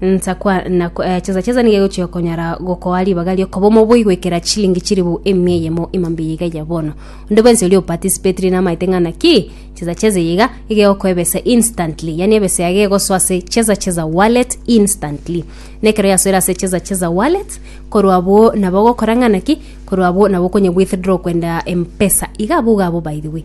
Nsakwa na eh, chesa chesa niga egochia konyara gokoa ribaga riokoba omoboi goikera chilingi chiribu emia eyemo imambe yiga ya bono onde bwensi oria opatisipetiri namaete ng'a naki chesa chesa yiga igegokoa ebesa instantly yani ebesa yage egosoa ase chesa chesa wallet instantly nekero yasoire ase chesa chesa wallet korwa abwo nabo ogokora ng'a naki korwa abwo nabo okonya withdraw kwenda mpesa iga abwo iga abwo by the way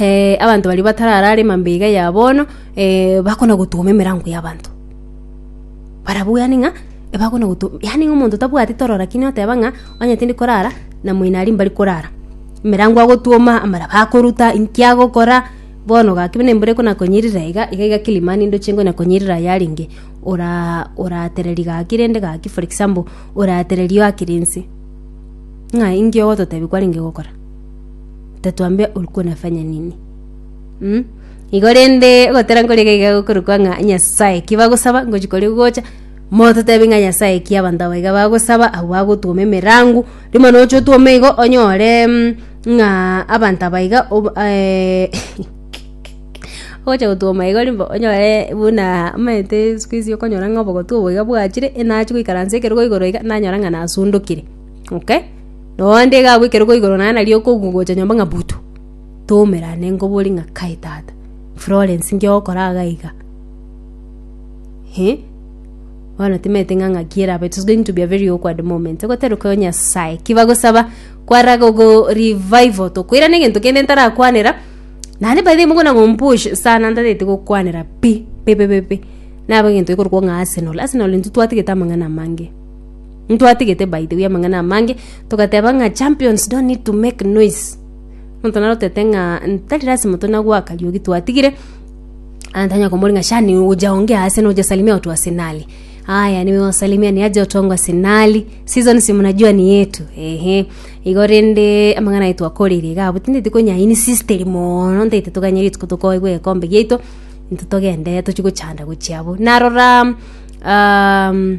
eh, abanto baria batararare emambe iga ya bono eh, bakona gotoma emerango y'abanto barabwo yani ng'a ebakona gotoma yani ng'a omonto tabwati toro lakini oteba ng'a onye tindi korara na moino aria mbari korara emerango agotoma amaraba akoruta inki agokora bono gaki buna embura ekona konyirira iga iga iga kilimani ndoche ngonya konyirira ayarenge ora oratereri gaki rende gaki for example oratereri oakire inse ng'a inki ogototebia kwarenge gokora tatwambia olikuwa nafanya nini mm? igo rende ogotera nkori iga iga gokorokwa ng'a nyasaye ki bagosaba ngochi kori gocha mototebi ng'a nyasaye ki abanto aba iga bagosaba abwo bagotwoma emerango rimo noche otwome igo onyore mm, ng'a abanto aba iga ob- eh, ogocha gotwoma igo rimbe onyore buna omanyete sikuizi okonyora ng'a obogotu obo iga bwachire enache goikaransa ekerogo igoro iga nanyora ng'a nasundokire Okay? Noonde iga agwo ekero kwaigorwa naye nario okogu- gocha nyomba ng'a butu, tomerane nkobori ng'a kae tata, Florence nki ogokora iga iga? Eh? Bono timanyete ng'a ng'aki erabe, it is going to be a very awkward moment. Ogoteroka o Nyasae, ki bagosaba, kwara gogo revival tokoirana egento kende ntarakwanera, naende by the way mogwena kompush sana ntagete gokwanera pi, pi pi pi pi. Nabo egento gekorokwo ng'a Arsenal, Arsenal intwe twatagete amang'ana amange. Ntwatigete by the way amang'ana amange togateba ng'a champions don't need to make noise. Monto naro otete ng'a ntari lasima tonagwa Kariuki twatigire ah, ntanya komori ng'a shani oja onge ase noja salimia watu wa Arsenali. Haya niwe wasalimia ni aje watu wangu wa Arsenali. Season si mnajua ni yetu. Ehe. Igo rende amang'ana aye twakorire iga abwo tinde tikonya insisteri mono ntaite toganye rituko tokoegwa egekombe giaito intwe togende tochi gochanda gochia abwo. Narora um,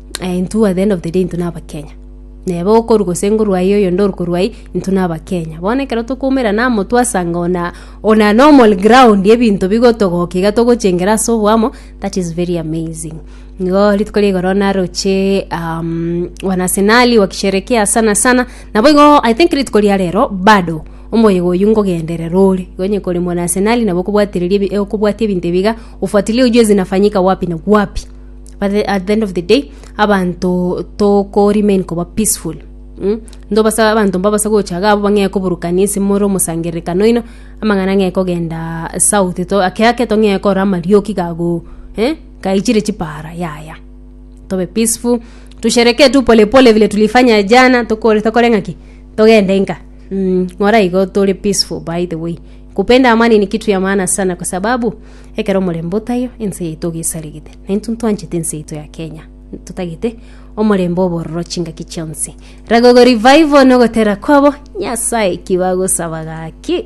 eh, intwe at the end of the day intwe n'abakenya nebe okoru gose ngoru aye oyo ndoru koru aye intwe n'abakenya bono ekero tokoumera na motu asanga ona ona normal ground ebinto bigotogoka iga togochengera ase obwamo that is very amazing nigo rituko rigoro naroche um, wanasenali wakisherekea sana sana nabo igo i think rituko ria rero bado omoyego oyu ngogenderera ore gonye kore mwanasenali nabo okobwatireria ebi- eh, okobwatia ebinto ebiga ufuatilie ujue zinafanyika wapi na wapi but the, at the end of the day abanto toko remain koba peaceful Mm? ndo basa abanto mbabasa gocha iga abwo bang'e koburukania ase more omosangererekano oino amang'ana ang'e kogenda south to ake ake tong'e korora amarioki gago eh? gaichire chipara yaya tobe peaceful tusherekee tu polepole vile tulifanya jana tokore tokore ng'aki togende nka mm, ng'ora igo tore peaceful by the way kupenda amani ni kitu ya maana sana kwa sababu Ekero omorembe otaiyo, ense yaito iga esarigite, na intwe ntwanchete ense yaito ya Kenya totagete omorembe obororo chingaki chionsi. Ragogo Revival nogotera kwabo Nyasae ki bagosaba gaki.